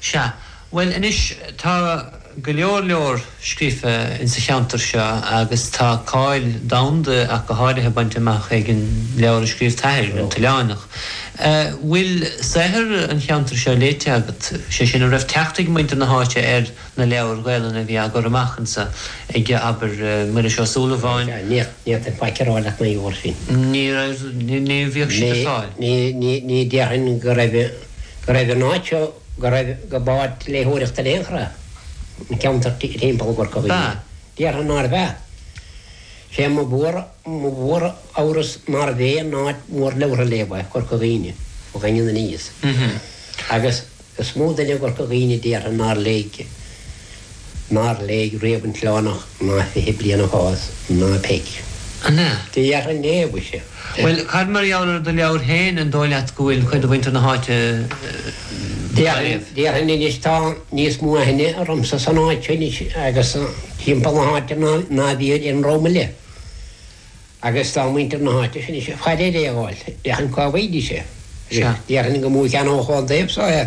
Sea, bhuel anois, tá go leor leor scríofa insa cheantar seo agus tá cáil domhanda ach go háirithe bainte amach ag an leabhar a scríobh t'athair, An tOileánach. 'Bhfuil saothar an cheantair seo léite agat, sé sin, an raibh teacht ag muintir na háite ar na leabhair Ghaelainne a bhí á gcur amach insa, ag, abair, Muiris Ó Súilleabháin? Sea, níor, níor, tá faic ar fáil leat, na leabhair sin. Ní raibh, ní, ní, bhíodh siad ar fáil. Ní, ní, ní, ní déarfainn go raibh. go raibh an áit seo go raibh, go b'áit léitheoireachta in aon chor a an ceantar timpeall Chorca Dhuibhne. Ba. Déarfainn nárbh ea. Sé mo mhór, mo mhór-amhras nárbh aon áit mhór leabhartha a léamh é Corca Dhuibhne, ón Daingean aniar. Agus is mó duine i gCorca Dhuibhne a déarfainn nár léigh. nár léigh riamh An tOileánach ná Fiche Bliain ag Fás ná Peig. An ea? Do dheartháir Neil, mhuise. Bhuel, cad mar gheall ar do leabhar féin, an dóigh leat go bhfuil cuid de mhuintir na háite dhá léamh? Déarfainn anois tá níos mó aithne ormsa san áit seo anois agus timpeall na háite ná bhí ar éinne romham eile. Agus tá muintir na háite seo anois ag faire ar aon dháil, déarfainn cá bhfaighidís é. Déarfainn go mó ceann ar fáil daoibhse é.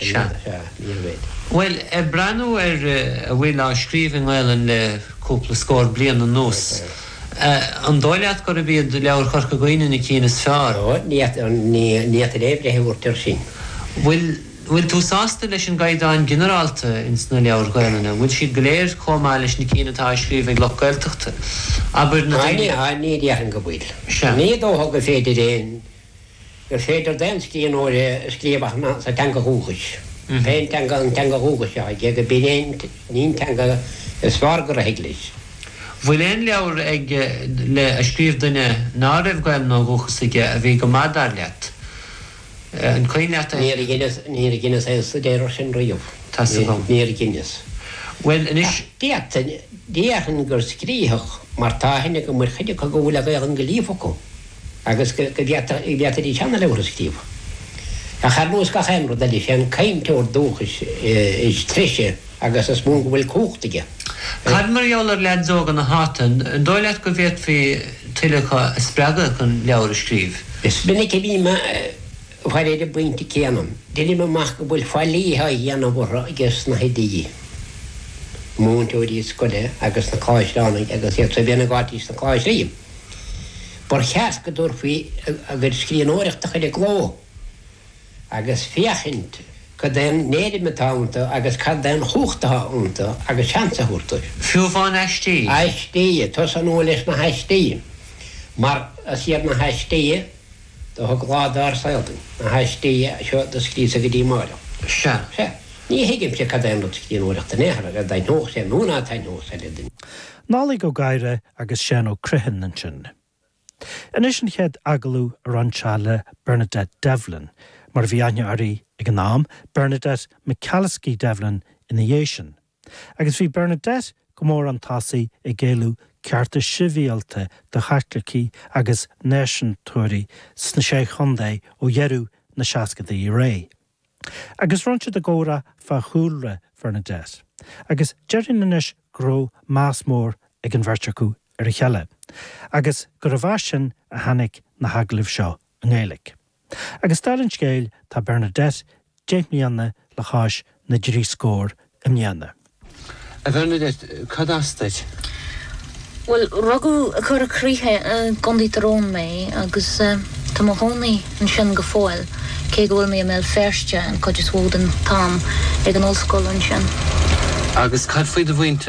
Seán. Sea, níorbh fhéidir. Bhuel, ag breathnú ar a bhfuil á scríobh i nGaelainn le cúpla scór bliain anuas, an dóigh leat gurb iad leabhair Chorca Dhuibhne na cinn is fearr? Ó, ní fhéadfainn aon bhreith a thabhairt air sin. Bhuel, bhfuil tú sásta leis an gcaighdeán ginearálta ins na leabhair Ghaelainne? An bhfuil siad go léir comh maith leis na cinn atá á scríobh ag lucht Gaeltachta, abair, na daoine? Á, ní, á, ní dhéarfainn go bhfuil. Sea. Ní dócha gur féidir d'aon. gur féidir d'aon scríbhneoir é a scríobh ach amháin sa teanga dhúchais. Pén teanga an teanga dhúchais seo aige, go b'in é an teanga is fearr go rithfidh leis. Bhfuil aon leabhar agat a scríobh duine ná raibh Gaelainn ó dhúchas aige a bhí go maith dar leat? An cuimhin leat é? Níor dheineas, níor dheineas aon stuidéar air sin riamh. Tá 's agam. Níor dheineas. Bhuel, anois. Ach d'fhéadfainn, déarfainn gur scríofadh, mar tá aithne agam ar chuid acu go bhfuil an Ghaelainn go líofa acu. agus go bhféadfaidís seana-leabhar a scríobh. Ach ar nós gach aon rud eile, is é an cainteoir dúchais is treise agus is mó go bhfuil cumhacht aige. Cad mar gheall ar leads óga na háite, an dóigh leat go bhféadfaí tuilleadh acu a spreagadh chun leabhair a scríobh? Is minic a bhím ag faire ar an bpointe céanna. Déanaim amach go bhfuil faillí á dhéanamh orthu aiges na hoidí, na múinteoirí scoile agus na coláisteánaigh agus iadsan féin atá ins na coláistí. Ba cheart go dtabharfaí a gcuid scríbhneoireachta chuig an gclódóir agus féachaint cad é an éirim atá iontu agus cad é an chumhacht atá iontu agus seans a thabhairt dóibh. Fiú amháin aistí? Aistí, tosóidh mé leis na haistí mar is iad na haistí a thug lá dár saol dúinn, na haistí seo do scríobhadh go dtí amárach. Sea, ní thuigimse cad é an rud scríbhneoireacht in aon chor, ar a dtaitneodh sé nó ná taitneodh sé le duine. Nollaig Ó Gadhra agus Seán Ó Criomhthain ansin. Anois an chéad agallamh a rinn sé le Bernadette Devlin, mar a bhí aithne uirthi ag an am, Bernadette McAliskey Devlin ina dhiaidh sin. Agus bhí Bernadette go mór an tosaigh ag éileamh cearta sibhialta do Chaitlicigh agus náisiúntóirí sna Sé Chontae ó dheireadh na seascaidí i leith. Agus rinn siad an comhrá fá chúlra Bhernadette, agus déarfainn anois go raibh meas mór ag an bheirt acu ar a chéile, agus gurbh as sin a tháinig na hagallaimh seo i nGaeilg. Agus dála an scéil, tá Bernadette deich mbliana le cois na dtrí scór i mbliana. A Bhernadette, cad as duit? Bhuel, rugadh i gCora Croiche i gContae Thír Eoghain mé agus tá mo chónaí ansin go fóill, cé go bhfuil mé i mBéal Feirste an chuid is mhó den t-am, ag an ollscoil ansin. Agus cad faoi do mhuintir,